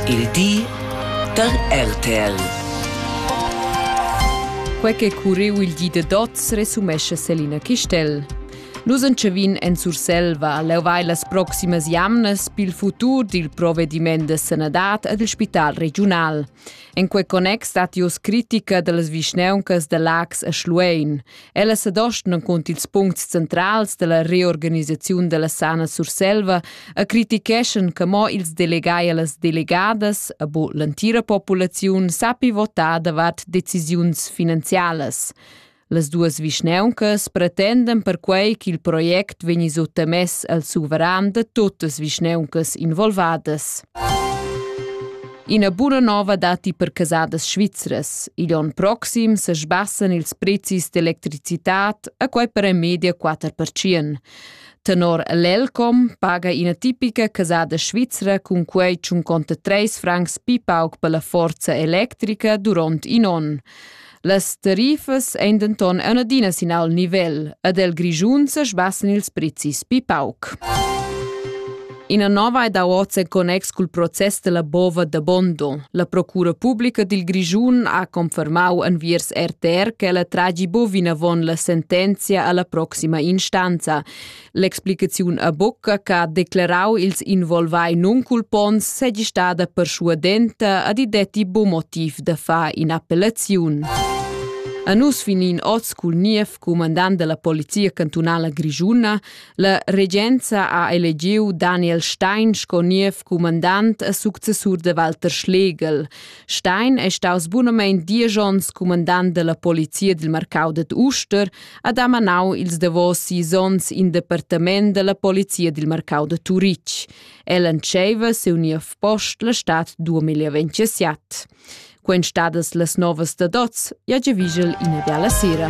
Il di da RTL. Quei che curriu il di da dots resumescha Selina Chistel. Nus entschevin en Surselva. Leu vai las proximas jamnas pil futur dil provvediment de sanadad ed il spital regiunal. En quei connex stat jus critica dallas vischneuncas da Lax e Schluein. Ella sedostnan cont ils puncts centrals dalla reorganisaziun dalla Sana Surselva e criticheschan che mo ils delegai e las delegadas, a bo l'entira populaziun, sappi votar davart decisiuns finanzialas. Las duas vischnauncas pretendan perquei ch'il project vegni suttamess al suveran da tuttas vischnauncas involvadas. Ina buna nova datti per casadas svizras. Igl onn proxim se sbassan ils prezis d'electricitad a quei per en media 4%. Tenor l'Elcom paga ina tipica casada svizra cun quei tschun conta 3 francs pi pauc per la forza electrica duront in onn. Las tarifas ein denton ein adina sin al nivel ed el Grischun sesbassen ils prezis pi pauc. Ina nova è da oz en connex col process della bova da Bondo. La Procura Pubblica dil Grischun ha confermau enviers RTR che la tragi bovina von la sentenzia alla proxima instanza. L'explicaziun a bocca che ha declarau ils involvai nunculponts segi stada perschuadenta ad i detti buc motiv da far in'appellaziun. A nus finin oz cul niev cumandant della polizia cantunala grigiuna, la regenza ha elegiu Daniel Stein sco niev cumandant a successur de Walter Schlegel. Stein è staus bunamein diesch onns cumandant della polizia dil marcau ded Uster ha damanau ils davos sis onns in departament dalla polizia dil marcau da Turitg. El entscheiva siu niev post la stad 2027. Quen stadas las novas da dots, ja già vigel ina biala sera.